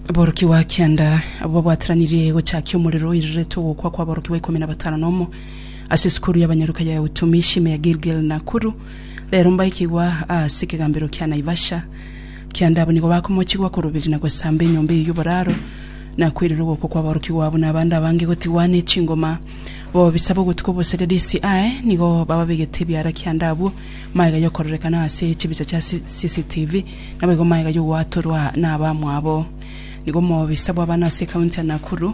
Aborokigwa kianda abo babwateranirie gochakia omorero oiriretwe ogokwa kwa aborokigwa ikomi na batano na omo ase esukuru y'abanyaruka ya Utumishi me ya Gilgil Nakuru rero mbaikigwa ase ekegambero kia Naivasha kianda abo nigo bakomochigwa koroberi na gosamba enyomba eye y'oboraro na koirera ogokwa kwa aborokigwa abo na abande abange gotigwa ne chingoma bobisabe ogotuka obosege DCI nigo bababegete ebiara kianda abwo magega y'okororekana ase chibicha chia CCTV Naboigo magega y'ogwatorwa nabamwabo. Nigo omobisa bw'abana ase ekaunti ya Nakuru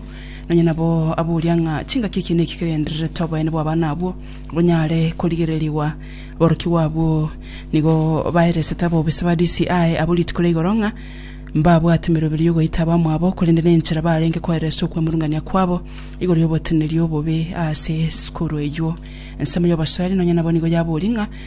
nonye nabo aboria ng'a chingaki ekiina eki kegendererete oboyene bw'abana abwo bonyare korigererigwa. Aborokigwa abwo nigo baeresete abobisa ba DCI abo rituko ria igoro ng'a mbabwate emeroberio y'ogoita abamwabo korende nenchera barenge koeresa okwemurungania kwabo igoro y'oboteneneri obobe ase sukuru eywo. Ensemo y'obosoeri nonye nabo nigo yaboria ng'a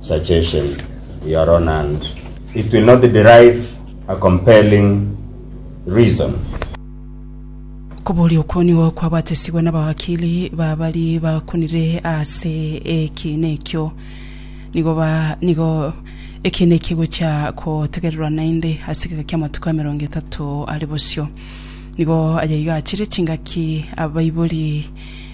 Suggestion, Your Honand, it will not derive a compelling reason. Koboria okwo nigo kwabatesigwe nabawakili ba bari bakunire ase ekiina ekio. Nigo ba nigo ekiina eki egochia kotegererwa naende ase egeka ki'amatuko emerongo etato are bosio. Nigo aya iga achire chingaki abaibori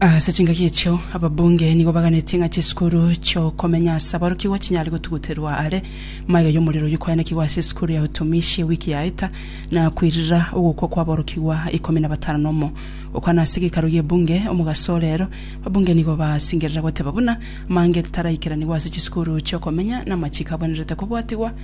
Ase chingaki echio, ababunge nigo baganetie ng'a chisukuru chi'okomenya ase aborokigwa chinyare gotuguterwa are. Magega y'omorero oyio kwaenekigwa ase esukuru ya Utumishi ewiki yaeta, na koirira ogokwa kw'aborokigwa ikomi na batano na omo. Gokwana ase gekaro y'ebunge omogaso ore ero, ababunge nigo baasingerera goteba buna amang'e taraikeraniwa ase chisukuru chi'okomenya na amachiko abwenerete kobwatigwa